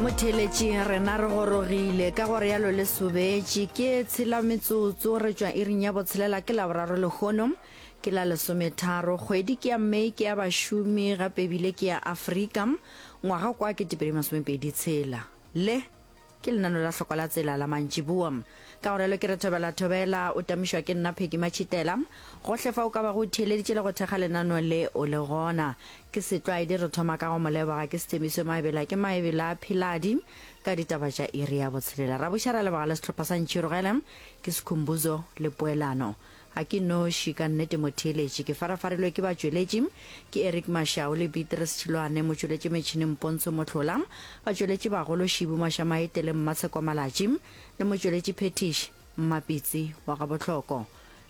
motheletši rena re gorogile ka gore yalo le sobetše ke e tshela metsotso re tšwa iring ya botshelela ke laboraro lehono ke la lesometharo kgwedi ke ya may ke ya bašomi gape ebile ke ya afrika ngwaga kwa ke tepedi masomepedi tshela le Ke lenano la hloko la tsela la mantšiboa. Ka go realo ke re thobela thobela, o tamišwa ke nna Peggy Matšhitela. Gohle fa o ka bago o theeleditše le go thekga lenano le, o le gona. Ke setlwaedi re thoma ka go mo leboga ke Sthembiso Maebela ke Maebela Philadi ka ditaba tša iri ya botshelela. Ra buša ra leboga le sehlopha sa Ntšhirogele ke Skhumbuzo le Poelano. Ga ke noši, ka nnete motheeletši. Ke farafarilwe ke batšweletši. Ke Eric Mashau le Beatrice Tšhiloane, motšweletši metšhineng Pontsho Mohlola, batšweletši bagolo Shibu Mashamaete le Mmatshekwa Malatši, le motšweletši phethiši Mmapitsi wa Gabohloko.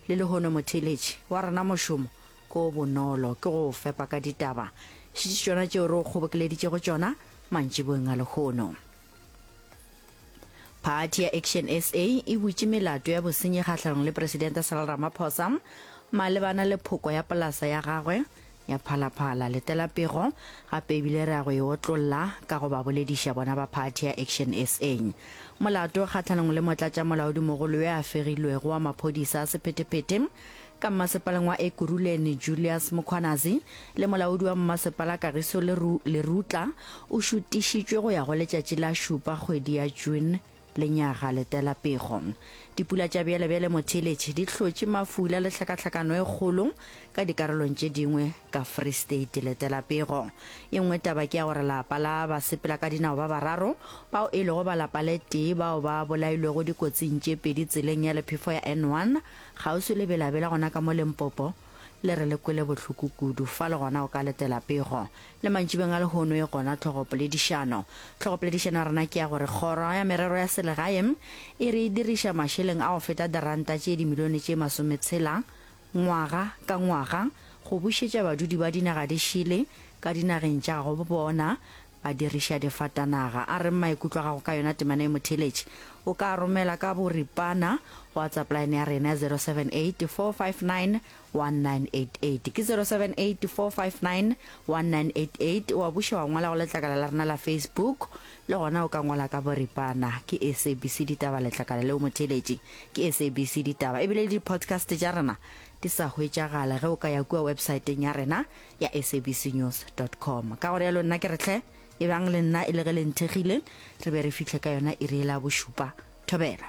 Le lehono motheeletši, wa rena mošomo ke o bonolo, ke go o fepa ka ditaba. Šetše tšona tšeo re o kgobokeleditšego tšona mantšiboeng a lehono. Phathi ya Action SA e butše melato ya bosenyi kgahlanong le Presidente Cyril Ramaphosa malebana le phoko ya polasa ya gagwe ya Phalaphala. Letela pego gape ebile re ya go e otlolla ka go ba bolediša bona ba phathi ya Action SA. Molato kgahlanong le motlatšamolaodimogolo yo a fegilwego wa maphodisa a sephetephete ka mmasepaleng wa Ekurhuleni Julius Mukhwanazi le molaodi wa mmasepala Kagiso Lerutla o šutišitšwe go ya go letšatši la šupa kgwedi ya June lenyaga letela pego. Dipula tša bjalebjale motheeletše di hlotše mafula le tlhakatlhakano e kgolo ka dikarolong tše dingwe ka Free State letela pego. E nngwe taba ke ya gore lapa la basepela ka dinao ba bararo bao e lego ba lapa le tee bao ba bolailwego dikotsing tše pedi tseleng ya lephefo ya N1 Kgauswi le Bela-Bela gona ka mo Limpopo le re le kwele bohloko kudu. Fa le gona o ka letela pego. Le mantšibeng a lehono e gona tlhogopoledišano. Tlhogopoledišano ya rena ke ya gore Kgoro ya Merero ya Selegae e re e diriša mašeleng a go feta diranta tše dimilione tše masometshela ngwaga ka ngwaga go bušetša badudi ba dinaga di šele ka dinageng tša gabo bona A diriša difatanaga. A reng maikutlo a gago ka yona temana e mo theletše? O ka a romela ka boripana go WhatsApp line ya rena ya 0784591988. Ke 0784591988. Wa buša wa ngwala go letlakala la rena la Facebook. Le gona o ka ngwala ka boripana. Ke SABC Ditaba letlakala le o mo theletše. Ke SABC Ditaba. Ebile le di-podcast tša rena di sa hwetšagale ge o ka ya kua websaeteng ya rena. ya sabcnews com ka gore yalo nna ke re tlhe e bang le nna e le ge le nthekgile re be re fitlhe ka yona e re e la bošupa thobela